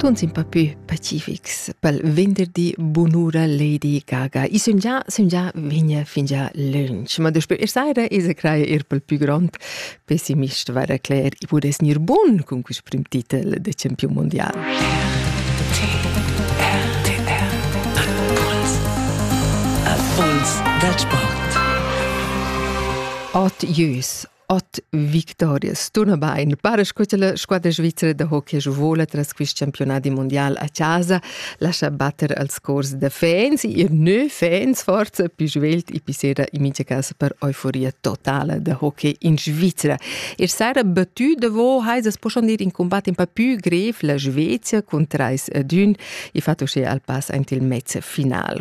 Tuns in pa più pacifics pel venderdi bunura Lady Gaga. I sun già, sun già vigna fingià lönch, ma daspö e saira esa craja eir pel pü grond pessimist vara Claire i pudess gnir bun cun quist prim titel da champiun mundial. Avuls da sport. Ot Jüs Ot victorias. Tunabain, para sco la squadra svizzera da hockey vola tras quest campionati mondial a casa, lascia batter als cors da fans, ir neu fans forza più svelt e più sera in mincha casa per euforia totala da hockey in Svizzera. Er sera battu da vo, hai sas posson dir in combat in pa più grev la Svezia con 3 ad 1 e fatto sche al pass ant il mezz final.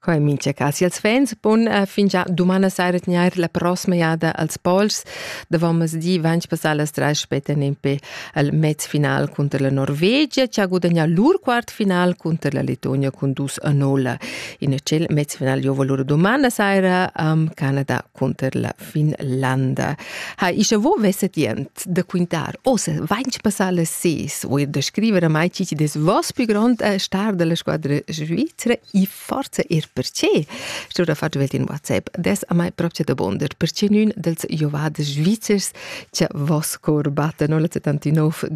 Co in mincha cas ils fans bun uh, fingià dumana saira tgnair la prossima jada als Pols davomesdi vanch passà las trais spettan impe al mez final cunter la Norvegia chi ha gudagnà lur quart final cunter la Letonia cun dus a nolla. In tschel mez final giovo lur dumana saira am Canada cunter la Finlanda. Ha, ischa vo vesset jent da quintar, o se vainch passà las ses, o er da scriver a mai ci ci des vos più grand a star della squadra Svizra e forza er perché? Stura fatg velt in WhatsApp, des a mai proprio da bonder, perché nun dels jovades svizzers Cia vos cor batte 1979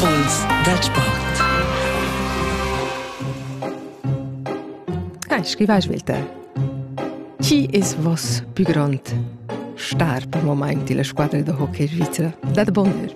Impuls dal Sport. Hai scrivai svelte. Chi es vos più grond star per moment della squadra de hockey svizzera? Dat bonheur.